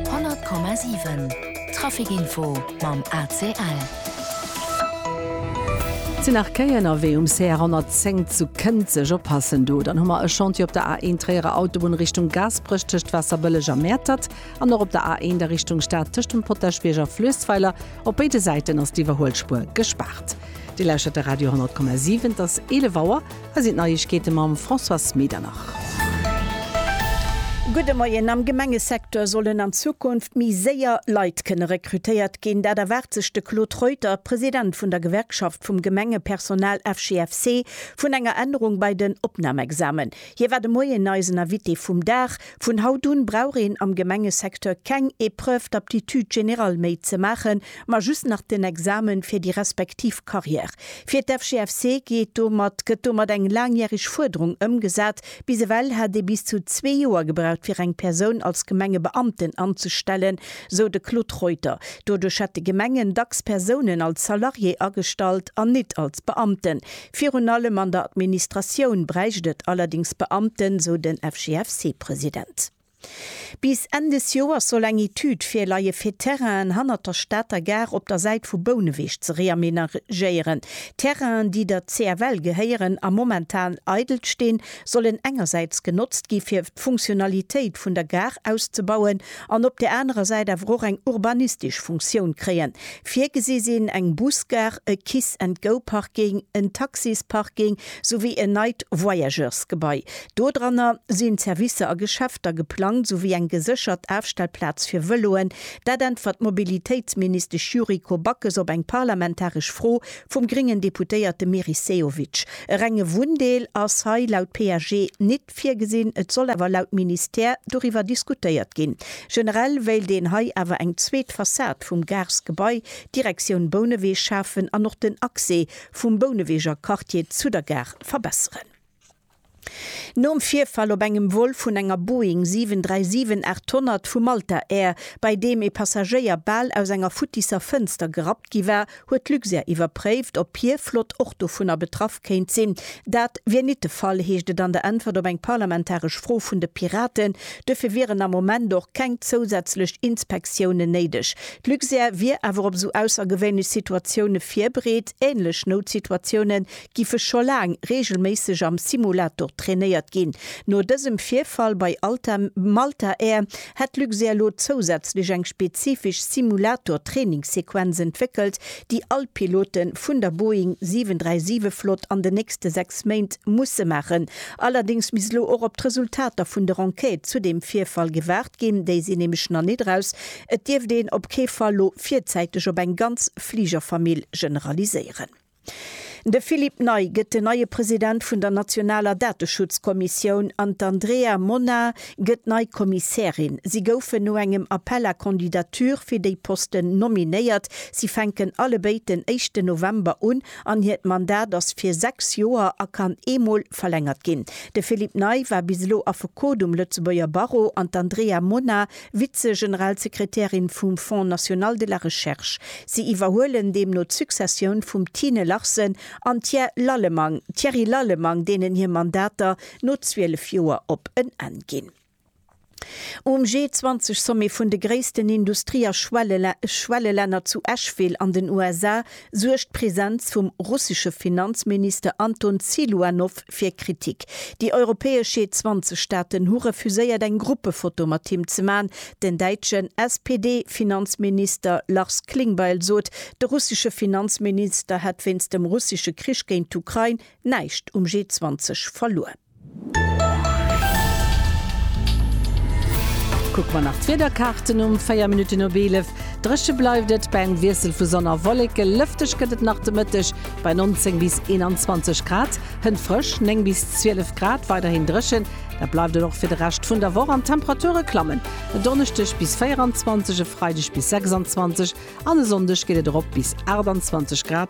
100,7 Trafic info mam ACL. Sinn nach Kéi ënnerwee um CR 110 zu Kënzeg? Oppassen do, dann hu mer e Chantier op der A1 Tréierer Autobunn Richtung Gaasperech tëscht Waasserbëlleg a Mäertert an och op der A1 a Richtung Stad tëscht dem Potaschbierg a Fluessweiler. Op béide Säiten ass d'Iwwerhuelspuer gespaart. Dir lauschtert de Radio 100,7, et ass 11 Auer. Hei sinn d'Neiegkeete mam Françoise Medernach. Gudde Moien, Am Gemengesecteur sollen an Zukunft méi séier Leit kënne rekrutéiert ginn. Dat erwaart sech de Claude Reuter, President vun der Gewerkschaft vum Gemengepersonal FGFC, vun enger Ännerung bei den Opnamexamen. Hie war de Moien eisen Invité vum Dag. Vun haut un brauch een am Gemengesecteur keng Épreuve d'aptitude générale méi ze maachen, ma just nach den Examen fir déi respektiv Carrière. Fir d'FGFC geet domat gëtt domat eng laangjährig Fuerderung ëmgesat. Bis ewell hat ee bis zu zwee Joer gebraucht fir eng Persoun als Gemengebeamten anzestellen, sou de Claude Reuter. Doduerch hätte Gemengen dacks Persounen als Salarié agestallt an nit als Beamten. Virun allem an der Administratioun bräicht et allerdéngs Beamten, sou den FGFC-President. Bis Enn des Joers soll eng Etüd virleie fir Terrainen hannert der Stater Gare op der Säit vu Bouneweg ze reamenagéieren. Terrainen, déi der CFL gehéieren a momentan eidel stinn, sollen engersäits genotzt gi fir d'Funktionalitéit vun der Gare auszebauen an op där anerer Säit awer och eng urbanistesch Funktioun kréien. Virgesi sinn eng Busgare, e Kiss-and-Go-Parking, en Taxisparking souwéi en neit Voyageursgebai. Dodranner sinn d'Servicer a Geschäfter geplangt, souwéi eng geséchert Afstellplaz fir Vëloen. Dat äntwert d'Mobilitéitsministesch Yuriko Backes op eng parlamentaresch Fro vum gréngen Deputéierte Meris Sehovic. E renge Wunndeel ass hei laut PAG nit. Text virgesinn. Et soll awer laut Ministère doriwwer diskutéiert ginn. Generell wéilt een hei awer eng zweet Fassad vum Garesgebai Direktioun Bouneweg schafen an och den Accès vum Bouneweger Quartier zu der Gare verbesseren. Nom Virfall op engem Vol vun enger Boeing 737 800 vu Malta Air, bei deem ee Passagéier bal aus enger futtisser Fënster gerappt gi war, Huet d'Luxair iwwerpréift, ob hir Flott och dovunner betraff kéint sinn? Dat wier nit de Fall, heescht et an der Äntwert op eng parlamentaresch Fro vun de Piraten. Duerfir wieren am Moment och keng zousätzlech Inspektiounen néideg. D'Luxair wier awer op esou aussergewéinlech Situatioune virbereet. Änlech Noutsituatioune giffe scho laang reegelméisseg am Simulator trainéiert ginn. No dësem Virfall bei Alta Malta Air hätt Luxair elo zousätzlech eng spezifesch Simulator-Trainingssequenz entwéckelt, déi all Pilote vun der Boeing 737 Flott an den nächste sechs Méint musse maachen. Allerdéngs misst elo och op d'Resultater vun der Enquête zu deem Virfall gewaart ginn, déi sinn nämlech nach net eraus. Et dierft een op kee Fall elo virzäiteg op eng ganz Fligerfamill generaliséieren. De Philippe Ney gëtt den neie President vun der nationaler Dateschutzkommissioun an d'Andrea Mona gëtt nei Kommissärin. Si goufen no engem Appel à candidatures fir déi Posten nominéiert. Si fänken allebéid den éischten November un an hiert Mandat ass fir sechs Joer a kann eemol verlängert ginn. De Philippe Ney war bis elo Affekot um Lëtzebuerger Barreau an d'Andrea Mona Vize-Generalsekretärin vum Fonds National de la Recherche. Si iwwerhuelen deemno d'Successioun vum Tine Larsen an Thier Lallemang, Thierry Lallemang, deenen hir Mandater no 12 Joer op en Enn ginn. Um G20-Sommet vun de gréissten Industrie a Schwellelänner zu Asheville an den USA suergt d'Presenz vum russesche Finanzminister Anton Siluanow fir Kritik. Déi europäesch G20-Staaten hu refuséiert eng Gruppefoto mat him ze man. Den däitschen SPD-Finanzminister Lars Klingbeil sot, de russesche Finanzminister hätt wéinst dem russesche Krich géint d'Ukrain näischt um G20 verluer. Kucke mer nach d'Wiederkaarten um 4 Minutten op 11. Dréche bleift et bei engem Wiessel vu Sonn a Wolleke. Lëfteg gëtt et nach de Mëtteg bei 19 bis 21 Grad. Hënt frësch, 9 bis 12 Grad. Weiderhin dréchen, dat bleift et och fir de Rescht vun der Woch an d'Temperature klammen e Donneschdeg bis 24, e Freideg bis 26 an e Sonndeg geet et erop bis 28 Grad.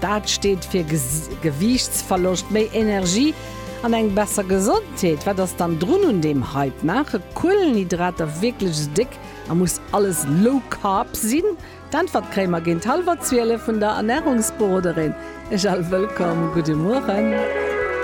Dat steet fir Gewiichtsverloscht, méi Energie an eng besser Gesondheet. Wat ass dann drun un deem Hype? Maache Kuelenhydrater wierklech esou déck a muss alles low carb sinn? D'Äntwert kréie mer géint hallwer 12 vun der Ernärungsberoderin Jal Wëllkomm. Gudde Mueren.